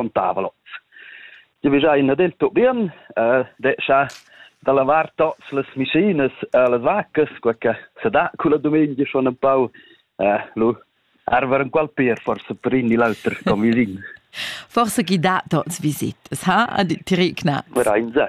contava lot. Io vegia ina del Turbin, eh, descha da lavar tots las machines, eh, las vaccas, quel che se dà con la domenica schon un po' eh, lu arver un qual per forse per in l'altro con vicin. Forse chi dà tots visitas, ha? Dirigna. Verein se.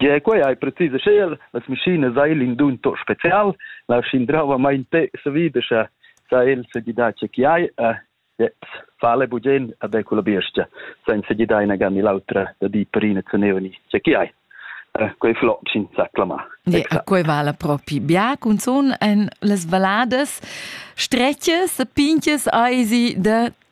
Gie, quei ei precis aschia. Las maschinas ein in dun tot special. La schindravamain te savidescha sa el segidar che chi hai e jetzt fale bugen a de quella biestia senza gli dai una gammi l'altra da di perina cenevani che chi hai eh, quei flot sin sa clamar ja, quei vala propi bia cunzun en las valadas stretches e pinches eisi da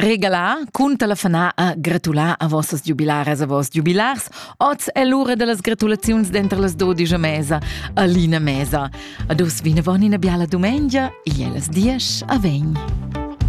Regalar cunter la fana a gratular a vossas giubilaras a voss giubilars. Oz è l'ura dellas gratulaziuns dentro las dodigia mesa, a Lina Mesa. Ad us vinavon ina biala dumengia, e las dies a vegn.